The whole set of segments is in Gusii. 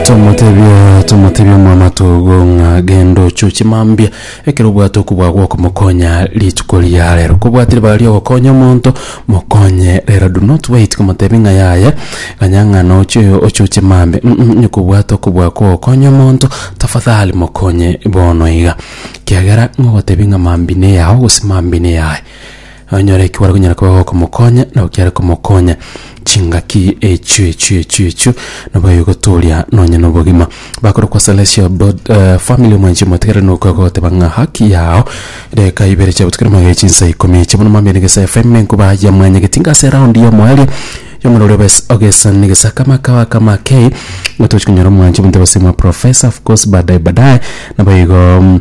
tomotebia tomotebia omwamato ogo ng'a genda oche ochimambia ekero obwate okobua gwokomokonya rituko ria rero kobwatire baria ogokonya omonto mokonye rero do not wait komotebi ng'a yaya ganya ng'a noche oyo oche ochimambia mm mm onye kobwate okobua kogokonya omonto tafadhali mokonye bono iga kiagera ng'ogotebi ng'a mambia neyao gose mambia neyaye Onyore eki gware konyara koba gokomokonya, nabo kiare komokonya. Chingaki echio echio echio echio nabo egotooria nonye nobogima. Bakorokwa Celestial Bod- eh, Family mwenche motigere nokoa goteba ng'a haki yao deka ibere chia botuko magere chinsa ikomi echi bono mambia negesa FM ne nkuba ya mwanya getinga ase round ya omoerio yomura oria obes ogesa negesa kama kawa kama kei ng'otochi konyora omwancho monto base mwa Professor of course badaye badaye nabo igo mm,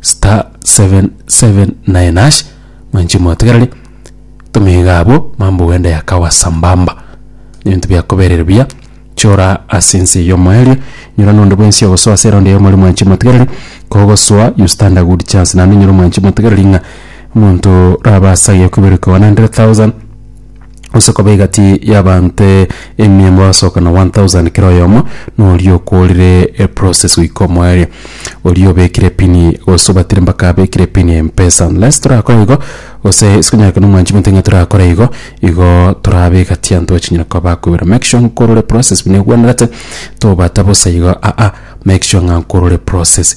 star 779 hash mwanche motegerere tomiga abo mambo wende yakawa sambamba ebinto biakoberere buya chora ase ense y'omoerio nyora nonde bwensi ogosoa ase eraundi eyemo mwanchi motegereri kogosoa you stand a good chance naende nyora mwanchi motegereri ng'a omonto rabe asage koiberwa koba na 100,000 gose koba egati y'abaanto emia mogosoka na 1000 kera oyomo, na oria okoorire eprosesi goika omoerio. Oria obekire epini gose obatire mpaka abekire epini y'empesa. Unless torakore igo, gose sikonyara kera omwanchi omonto ng'a torakore igo, igo torabe egati y'abanto bachinyare koba bakoiberwa. Make sure nkore ore process buna egwenerete, tobata bosa igo aa, make sure ng'a nkore ore process.